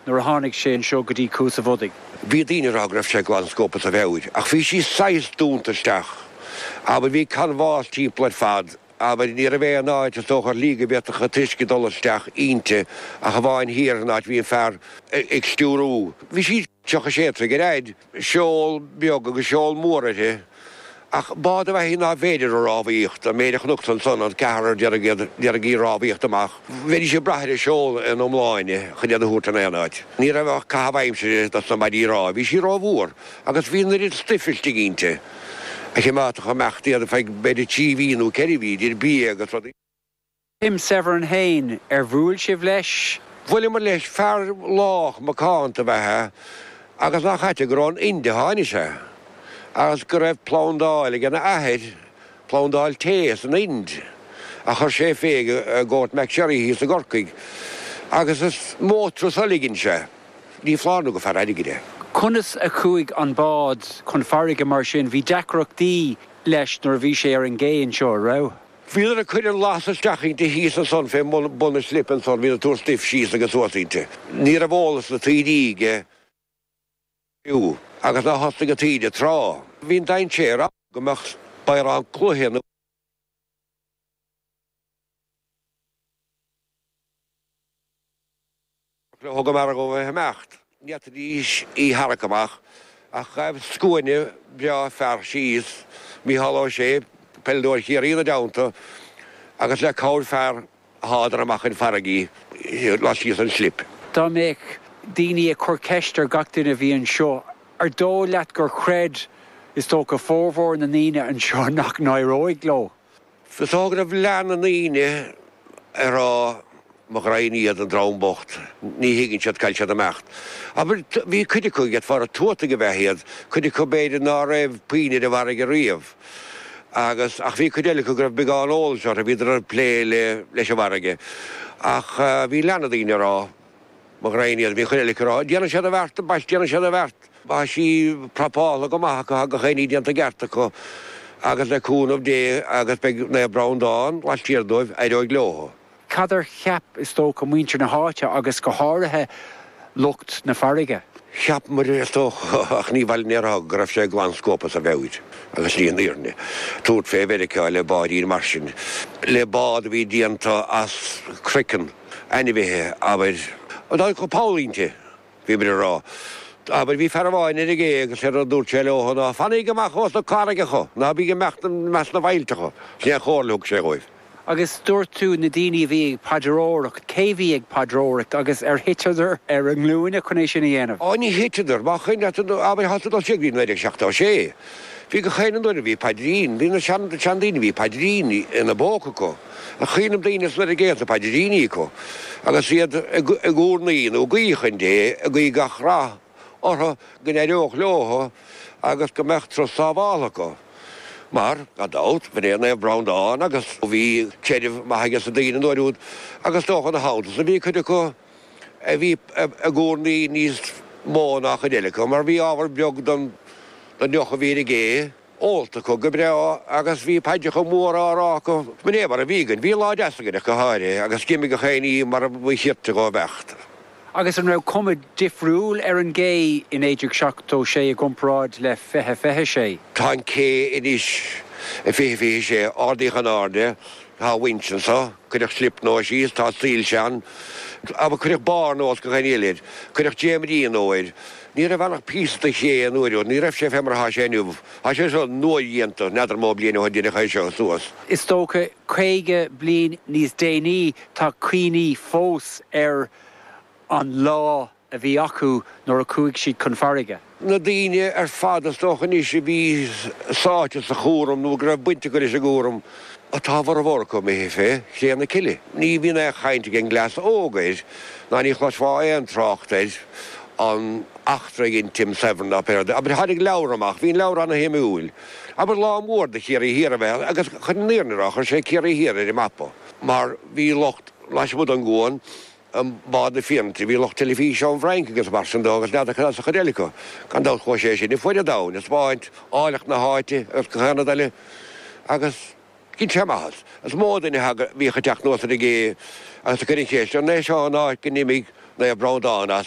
nuair a tháinig sé anseo go dtí Cuas a' Bhodaigh. Bhí daoine ag rá go raibh sé glan scuabtha sa mheabhair, ach bhí sí saghas dúnta isteach. Abair, bhí canbhás timpeall ar fad. Abair, ní raibh aon áit, is dócha, ar shlí go bhféadfadh an t-uisce dul isteach inti, ach amháin thiar, an áit a bhí an fear ag stiúrú. Bhí sí, 36 troigh ar fhaid. seol beag agus seol mór uirthi, ach bád ab ea í nárbh fhéidir a rámhaíocht, an méid a chonacsa ansan an ceathrar a d'iarraidh, d'iarraidh í a rámhaíocht amach, bheidís ag brath ar an seol in iomláine chun iad a thabhairt in aon áit. Ní raibh ach caitheamh aimsire dos na maidí rámha, bhí sí rómhór, agus bhí an oiread stuife istigh inti a chimeádfadh ag imeacht iad feadh b'fhéidir trí mhí nó ceithre mhí, idir bia agus rudaí. Tim Severin féin, ar bhuail sibh leis? Bhuaileamar leis, fear lách macánta ab ea é agus nach ait é gur ón Ind a tháinig sé, agus go raibh plandáil ag an athair, plandáil tae, san Ind ach chuir sé fé i gCourtmacsherry thíos i gCorcaigh, agus is mó turas eile a dhein sé. Ní foláir nó gur fear airgid é. Conas a chuaigh an bád chun farraige mar sin? Bhí deacrachtaí leis nuair a bhí sé ar an gcé anseo, an raibh? Bhíodar ag cur an lasta isteach inti thíos ansan fé bhun na slipe ansan, bhíodar ag tabhairt stuif síos agus suas inti. Ní raibh eolas na taoide aige fiú agus nár thosnaigh an taoide ag trá. Bhí an dainséar ann go mbeadh spioraid cloiche nó. Nuair a thug an margadh a himeacht, n'fhéadfaidís í tharrac amach, ach ghaibh scuaine breá fear síos, Micheál Ó Sé, peileadóir Chiarraí, ina dteannta, agus le cabhair fear, shádar amach chun farraige í, laistíos den slip. Dá mbeadh daoine ag cur ceist ar gach duine a bhí anseo, an dóigh leat gur chreid, is dócha, formhór na ndaoine anseo nach n-éireoidh leo? Is dóigh go raibh leath na ndaoine ag rá, Mo ghraidhin iad, an dream bocht, ní thuigeann siad cá bhfuil siad ag imeacht. Abair, bhí cuid acu gur fearaibh tuatacha ab ea iad, cuid acu b'fhéidir ná raibh puinn ar an bhfarraige riamh, agus, ach bhí cuid eile acu go raibh beagán eolais orthu, bhíodar ag plé leis an bhfarraige. Ach bhí leath na ndaoine ag rá. Mo ghraidhin iad, bhí cuid eile acu ag rá. Déanfaidh siad an bheart, bhuel, déanfaidh siad an bheart. Tá sí prapáilte go maith acu, tá gach aon ní déanta i gceart acu agus le cúnamh Dé agus beidh Naomh Breandán laistiar dóibh, éireoidh leo. Cad a cheap, is dócha, muintir na háite agus go háirithe lucht na farraige? Cheap muid, is dócha, ach ní bhaineann aon rud, go raibh sé glan scuabtha sa mheabhair agus sin í an fhírinne. Tabhairt fé Mheiriceá le báidín mar sin, le bád a bhí déanta as croiceann. Ainmhithe, abair. An dóigh chun póilín te, bhí muid ag rá. Abair, bhí fear amháin ar an gcé agus sé rud a dúirt sé leo ná, 'Fanaíg amach ós na carraigeacha, ná bíg i measc na bhfaillteacha. Sin é an chomhairle a thug sé dhóibh. Agus dúirt tú, na daoine a bhí ag paidreoireacht, cé bhí ag paidreoireacht agus ar thiteadar ar a nglúine chun é sin a dhéanamh? Ó, ní thiteadar. Má chuir leat, abair, tá tú ag dul siar go dtí 1976, bhí gach aon duine, bhí paidrín, bhí na seandaoine, bhí paidrín ina bpóca acu, a chaoineann daoine sula raibh géanta paidríní acu agus iad ag urnaí nó ag guí chun Dé, ag guí gach rath orthu, go n-éireodh leo agus go mbeadh turas sábháilte acu. Mar, gan dabht, ba é Naomh Breandán agus bhí creideamh maith aiges na daoine an uair úd agus is dócha gan amhras, bhí cuid acu a bhí ag urnaí níos mó ná cuid eile acu mar bhí ábhar beag den deoch a bhí ar an gcé. ólta acu go breá agus bhí paidreacha móra á rá acu. Sin é mar a bhí againn. Bhí lá deas againn ach go háirithe, agus d'imigh gach aon ní mar ba cheart dó imeacht. Agus an raibh cuma difriúil ar an gcé i 1976 i gcomparáid le fiche fiche a sé? Tá an cé anois i fiche fiche a sé. Ardaíodh in airde. Tá winch anseo. Cuireadh slip nua síos. Tá soilse ann. Cuireadh barr nua os cionn an iolair. Cuireadh dréimirí nua air. Ní raibh ann ach píosa de ché an uair úd, ní raibh sé fé mar atá sé inniu. Tá sé seo nuadhéanta, n'fheadar mó bliain ó shoin a deineadh é seo suas. Is dócha caoga bliain níos déanaí tá cuimhní fós ar an lá a bhí acu nuair a chuaigh siad chun farraige. Na daoine ar fad, is dócha anois, a bhí sáite sa chúram nó go raibh baint acu leis an gcúram, Tá a bhformhór acu imithe fé chré na cille. Ní bhíonn aon chaint ag an gcleas óg air, ná ní chloisfeá aon trácht air, an eachtra a dhein Tim Severin, ná pé rud é. Abair, tháinig leabhar amach, bhí an leabhar ana-shuimiúil, abair, lá mór do Chiarraí Thiar ab ea é, agus chun an fhírinne a rá, chuir sé Ciarraí Thiar ar an mapa, mar bhí lucht, lasmuigh den gcuan, I mBád na Fianaite bhí lucht teilifíse ón bhFrainc agus mar sin dó agus n'fheadar cad as an chuid eile acu. Gan dabht chuaigh sé sin ar fuaid an domhain ag spáint áilleacht na háite agus gach aon rud eile agus dhein sé maitheas. Is mó duine a thagadh a bhíodh ag teacht anuas ar an gcé agus ag cur an cheist, an é seo an áit go n-imigh Naomh Breandán as?